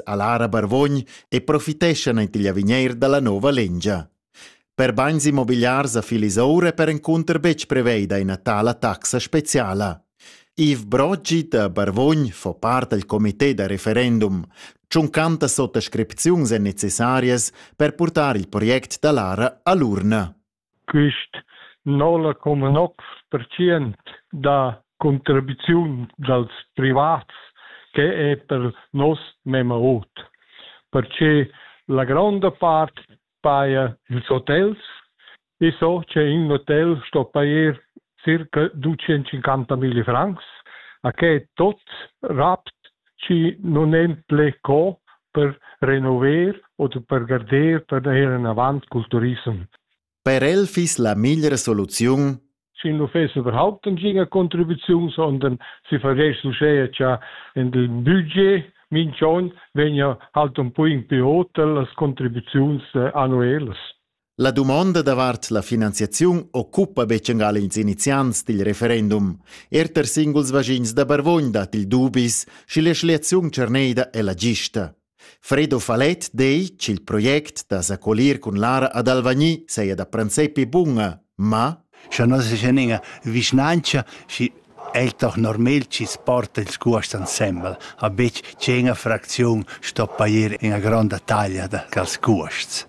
Alara Barvogn e profiteschan ent igl avigneir dalla nova lengia. Per bagns immobiliars a Filisoura è perencunter betg preveida ina tala taxa speciala. Yves Broggi da Barvogn fa part del comité da referendum. Tschuncanta sottascripziuns èn necessarias per purtar il project da Lara a l'urna. Quist nola come noc pertschien da contribuziun dals privats que è per nos memma ot, perche la gronda part paja ils hotels e so che ün hotel sto pajer circa ducientscinquanta mille francs, a que tot rapt chi nun en ple co per renover od per garder per ir enavant cul turissem. Per el fiss la migliera soluziun si nu fess überhaupt nagina contribuziun, sondern si vergess uschè cha in il budget minch'on vegna halt un po in più hotel las contribuziuns eh, annuelas. La dumonda davart la finanziaziun occupa betgengal ils iniziants dil referendum. Erter singuls vaschins da Barvogn dat il dubis, sche la schliaziun cerneida è la gista. Fredo Falet dei ch'il project da s'accolir cun Lara ad Alvagni saja da princepi bunga, ma Scha non se c'è ninga vischnanca, schi è doch normal ci sporta il scuast ensemble, a betg c'è una fraczione stoppa ir in una gronda taglia da cal scuasts.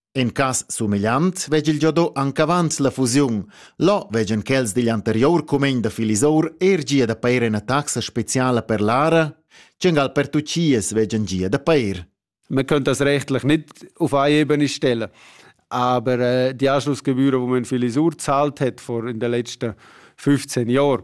In cas sumegliant vegg il giodò anc avant la fusiun. Là veggan quels digl anterior cumegn da Filisour er gia da pair ina taxa speciala per l'ara? Tschengal per tuchias veggan gia da pair. Man kann das rechtlich nicht auf eine Ebene stellen. Aber äh, die Anschlussgebühren, die man Filisur gezahlt hat vor in den letzten 15 Jahren,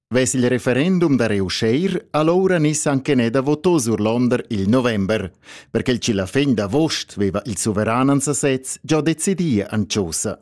Vess il referendum da reussir allora nis anche ne da votò surlonder il november, perché il cilafegn d'avost veva il suveran an sasez già decidia anciosa.